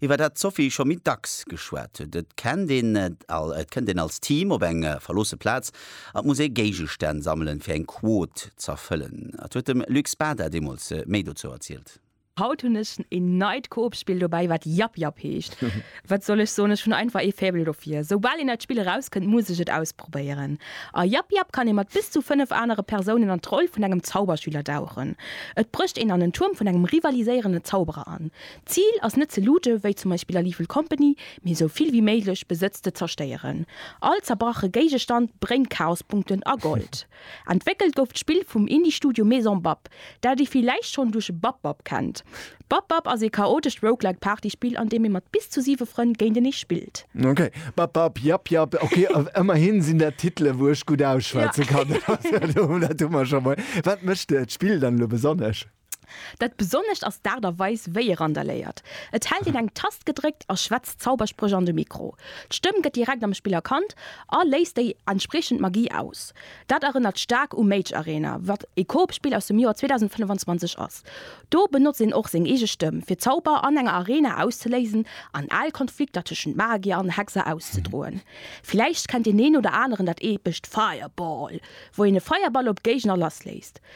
Iwwer dat d'Sophie scho méi dacks geschwat huet, et kennt een, et kënnt een als Team op eng verloosse Plaz a muss ee Géigestänn sammelen, fir eng Quot z'erfëllen. Et huet dem Luc Spada deemools méi dozou erzielt. Haut hunn ech een neit Coop-Spill dobäi, wat Yap Yap heescht. Wat soll ech soen, ech hunn einfach ee Faible dofir. Soubal een neit Spill erauskënnt, muss ech et ausprobéieren. A Yap Yap kann ee mat bis zu 5 anere Persounen an d'Roll vun engem Zauberschüler dauchen. Et brécht een an en Tuerm vun engem rivaliséierende Zauberer an. D'Zil ass net ze looten, wéi zum Beispill an Evil Company, mee esou vill wéi méiglech Besëtz ze zerstéieren. All zerbrache Géigestand bréngt Chaospunkten a Gold. Entwéckelt gouf d'Spill vum Indie-Studio Maison Bab, dat ee villäicht schonn duerch Bab Bab kennt. Bab Bab ass ee chaotescht Roguelike Partyspill, an deem ee mat bis zu siwe Frënn géintenee spillt. Ok, Bab Bab, jap jap, ok, ëmmerhin sinn dat Titele wou ech gutt ausschwätze kann, dat hu mer scho mol. Wat mécht d'Spill dann elo besonnesch? Dat Besonnescht ass d'Aart a Weis, wéi e randaléiert. Et hält een eng Tast gedréckt a schwätzt Zauberspréch an de Mikro. D'Stëmm gëtt direkt am Spill erkannt a léist déi entspriechend Magie aus. Dat erënnert staark u Mage Arena, wat e Coop-Spill aus dem Joer 2025 ass. Do benotzt een och seng eege Stëmm, fir Zauber an enger Arena auszeléisen an al Konflikter tëschent Magier an Hexer auszedroen. Villäicht kennt deen een oder aneren dat eepescht Fireball, wou een e Feierball op Géigner lassléisst.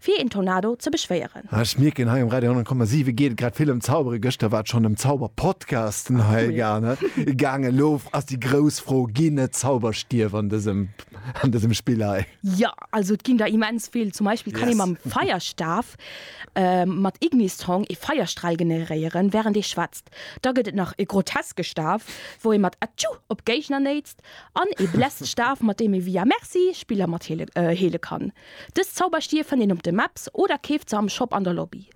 Fir een Tornado ze beschwéieren. Ah ech mierken hei um Radio 100,7 geet et grad vill ëm Zaubere. Gëschter war et schonn ëm Zauberpodcasten hei gaangen. Elo ass déi grouss Fro, ginn et Zauberstief an dësem an dësem Spill hei? Jo, also et ginn der immens vill. Zum Beispill kann ee mam Feierstaf mat Ignistrong ee Feierstral generéieren wärend ee schwätzt. Da gëtt et nach e groteske Staf wou ee mat Atschuu op Géigner néitst an ee Bläststaf mat deem ee via Merci Spiller mat heele heele kann. Dës Zauberstier fënnt een op de Maps oder keeft se am Shop an der Lobby.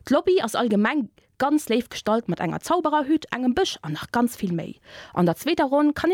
D'Lobby ass allgemeng ganz léif gestallt mat enger Zaubererhütt, engem Bësch an nach ganz vill méi. An der zweeter Ronn kann